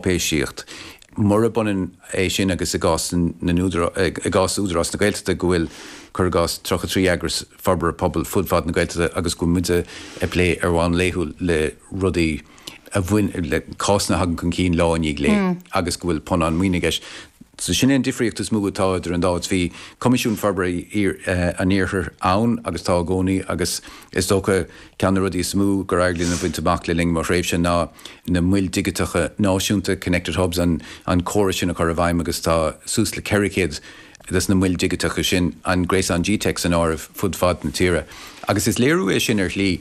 cháipéisíocht. Murab ionann é sin agus i gcás na n-údarás, i gcás Údarás na Gaeltachta, go bhfuil, cuir i gcás, 33 eagras forbartha pobail fud fad na Gaeltachta agus go bhfuil muid ag plé ar bhonn laethúil le rudaí a bhain, le cásanna a thagann chun cinn lá i ndiaidh lae agus go bhfuil punann maoine i gceist. So sin é an difríocht is mó atá idir an dá áit. Bhí Coimisiún Forbartha an Iarthair ann agus tá i gcónaí agus is dócha, Ceann de na rudaí is mó gur éirigh linn a bhaint amach le linn mo thréimhse ná na Moil Dhigiteacha Náisiúnta, Connected Hubs, an córas sin a chur i bhfeidhm agus tá suas le 400 de na Moil Dhigiteacha sin, an Gréasán gteic san áireamh, fud fad na tíre. Agus is léiriú é sin ar shlí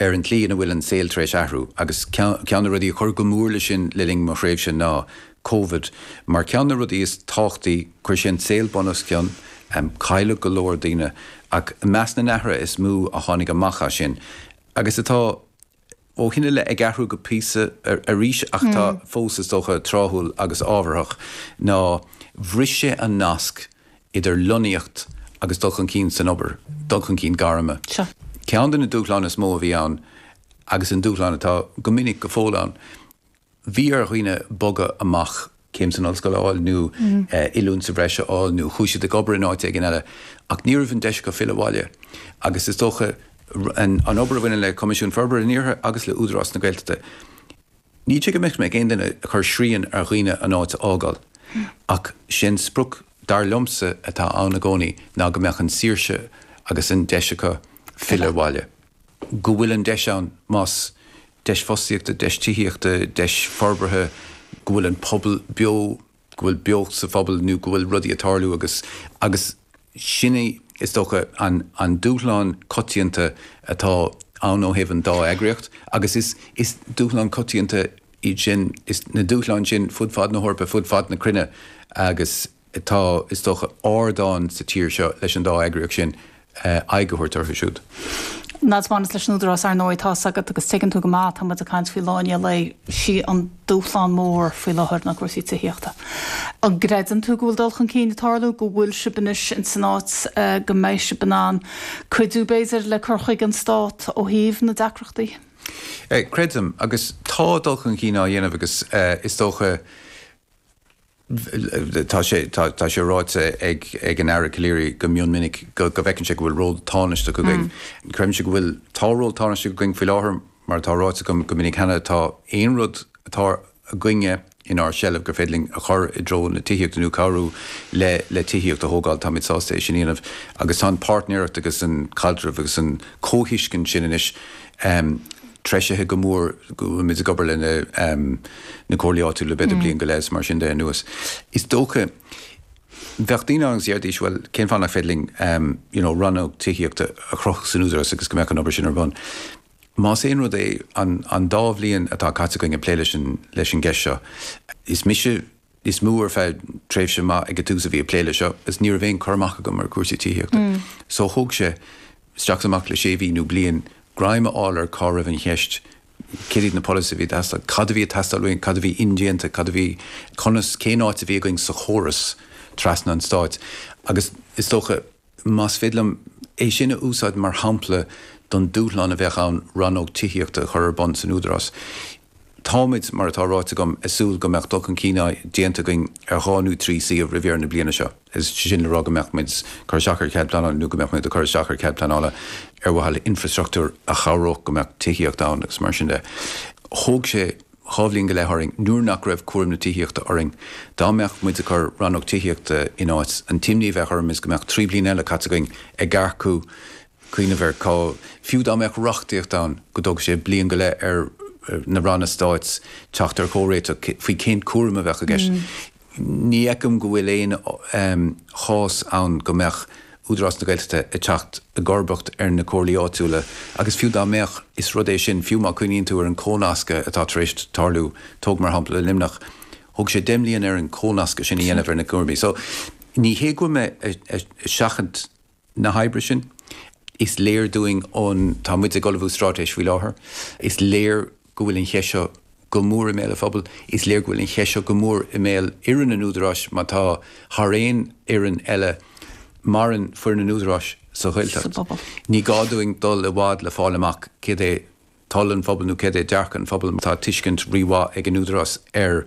ar an tslí ina bhfuil an saol tar éis athrú agus ceann de na rudaí a chuir go mór leis sin le linn mo thréimhse ná Covid. Mar ceann de na rudaí is tábhachtaí, chuir sé an saol bunoscionn, cailleadh go leor daoine, ach i measc na n-athruithe is mó a tháinig amach as sin, agus atá ó shin i leith ag athrú go píosa arís ach atá fós, is dócha, tráthúil agus ábharthach, ná bhris sé an nasc idir lonnaíocht agus dul chun cinn san obair, dul chun cinn gairme. Ceann de na dúshláin is mó a bhí ann, agus an dúshlán atá go minic go fóill ann, Bhí ar dhaoine bogadh amach, céim san ollscoil a fháil nó oiliúint sa bhreis a fháil nó chuaigh siad ag obair in áit éigin eile ach ní raibh an deis acu filleadh abhaile agus is dócha an obair a bhaineann le Coimisiún Forbartha an Iarthair agus le Údarás na Gaeltachta. Ní hé go mbeadh mé, aon duine ag cur srian ar dhaoine an áit a fhágáil ach sé an sprioc dar liomsa atá ann i gcónaí ná go mbeadh an saoirse agus an deis acu filleadh abhaile. go bhfuil an deis ann, más deis fostaíochta, deis tithíochta, deis forbartha, go bhfuil an pobal beo, go bhfuil beocht sa phobal nó go bhfuil rudaí ag tarlú agus, agus sin é is dócha an, an dúshlán coitianta atá ann ó thaobh an dá eagraíocht agus is, is dúshlán coitianta iad sin, na dúshláin sin fud fad na hEorpa, fud fad na cruinne agus. Tá, is dócha, ardán sa tír seo leis an dá eagraíocht sin aghaidh a thabhairt orthu siúd. Mar a bhaineas leis an Údarás, ar ndóigh, tá's agat, agus tuigeann tú go maith, tá muid ag caint faoi Lá i ndiaidh lae, 'sé an dúshlán mór faoi láthair ná cúrsaí tithíochta. An gcreideann tú go bhfuil dul chun cinn ag tarlú, go bhfuil sibh anois in san áit go mbeidh sibh in ann cuidiú, b'fhéidir, le cur chuige an Stát ó thaobh na deacrachtaí? Creidim, agus tá dul chun cinn á dhéanamh agus is dócha, Tá sé ráite ag an Aire Calleary go mion minic go bhfeiceann sé go bhfuil ról tánaisteach againn. Creidimse go bhfuil. Tá ról tánaisteach againn faoi láthair. Mar atá ráite agam go minic cheana, tá aon rud atá againne inár seilbh gur féidir linn a chur i dtreo na tithíochta nó cabhrú le tithíocht a thógáil, táimid sásta é sin a dhéanamh. Agus tá an páirtnéireacht agus an caidreamh agus an chomhthuiscint sin anois, treisithe go mór, go bhfuilmid ag obair leis na comhairlí áitiúla le b'fhéidir bliain go leith is mar sin de anuas. Is dócha bheadh daoine ann agus déarfaidís bhuel cén fáth nach féidir linn you know rannóg tithíochta a chruthú san Údarás agus go mbeadh an obair sin ar bun. Más aon rud é an an dá bhliain atá caite againn ag plé leis an leis an gceist seo is mise níos mó ar feadh tréimhse maith ag an tús a bhí ag plé leis seo agus ní raibh aon cur amach agam ar cúrsaí tithíochta. So thóg sé isteach is amach le sé mhí nó bliain greim a fháil ar cá raibh an cheist, céard iad na polasaithe a bhí ag teastáil, cad a bhí ag teastáil uainn, cad a bhí indéanta, cad a bhí, conas, cén áit a bhí againn sa chóras trasna an stáit agus is dócha, Más féidir liom é sin a úsáid mar shampla don dúshlán a bheadh ann rannóg tithíochta a chur ar bun san Údarás, táimid, mar atá ráite agam, ag súil go mbeadh dul chun cinn déanta againn ar dhá nó trí suíomh roimh dheireadh na bliana seo. Is é sin le rá go mbeadh muid ag cur isteach ar chead pleanála nó go mbeadh muid ag cur isteach ar chead pleanála ar mhaithe le infreastruchtúr a chabhródh go mbeadh tithíocht ann agus mar sin de. Thóg sé dhá bhliain go leith orainn nuair nach raibh cúram na tithíochta orainn. Dá mbeadh muid ag cur Rannóg Tithíochta in áit, an t-imní a bheadh orm is go mbeadh trí bliana eile caite againn ag earcú, cuimhneamh ar cá, fiú dá mbeadh reachtaíocht ann, go dtógfadh sé bliain go leith ar na Ranna Stáit teacht ar chomhréiteach faoi cén cúram a bheadh i gceist. Ní fheicim go bhfuil aon chás ann go mbeadh Údarás na Gaeltachta ag teacht i gcomharbacht ar na comhairlí áitiúla agus fiú dá mbeadh, is rud é sin, fiú má chuimhníonn tú ar an chomhnascadh atá tar éis tarlú, tóg mar shampla Luimneach, thóg sé deich mbliana air an comhnascadh sin a dhéanamh ar na cúraimí. So, ní hé go bhfuil mé ag seachaint. na hoibre sin. Is léir dúinn ón, tá muid ag ullmhú straitéis faoi láthair, is léir go bhfuil an cheist seo go mór i mbéal an phobail, is léir go bhfuil an cheist seo go mór i mbéal fhoireann an Údaráis mar tá, thar aon fhoireann eile, maireann foireann an Údaráis sa Ghaeltacht. Ní gá dúinn dul i bhfad le fáil amach céard é toil an phobail nó céard é dearcadh an phobail mar tá tuiscint rí-mhaith ag an Údarás ar